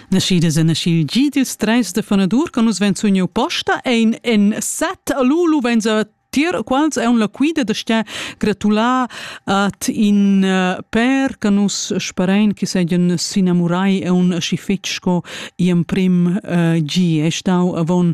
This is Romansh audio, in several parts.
Naschidas e naschil gi dils treis de fanadur che nus vein sugniu posta ein en set all'ulu vein tier quals ein la quida da sta gratular at in uh, per che nus sparein che seigien s'inamurai e un schi fetg sco i emprim uh, gi è stau avon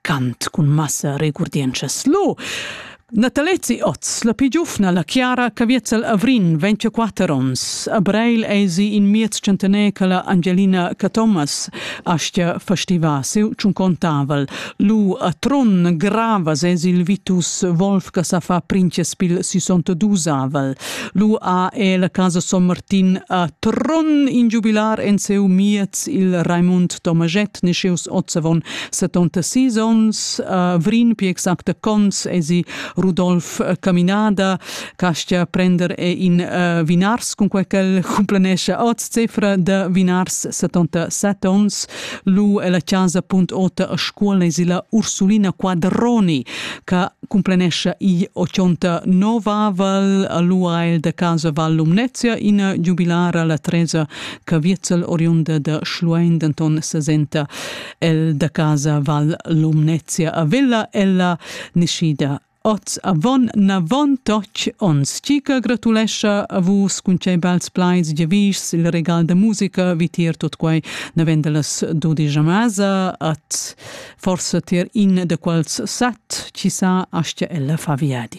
Cant cun massa regurdientschas. Lo! Natalezi Oz, la pi giufna, la Chiara Caviezel Avrin, 24 ons. A Breil esi in miez centener che la Angelina Cathomas astia festiva seu tschuncontavel. Lu a Tron grava sesi il vitus Wolf che sa fa princespiel 62avel. Lu a e la casa Son Martin a Tron in giubilar en seu miez il Raimund Tomajet ne seus Ozzavon 76 onns, uh, vrin pi exacta cons esi Rudolf uh, Caminada, castia prender e in uh, vinars con quel quel complanesce oz cifra de vinars 77 ons, lu e la casa punt ota a scuola esi la Ursulina Quadroni, ca complanesce i 89 aval, lu ha el de casa Val Lumnezia in jubilara la Tresa Caviezel oriunda de Schluein denton 60 el da casa Val Lumnezia a Villa ella niscida Oz avon navon toch ons Cica gratulescha a vus cun tgei bels pleis giavischs il regal da musica vitier tot quei navend las dudisch masa at forsa tier in da quels set ci sa astia ella fa viadi.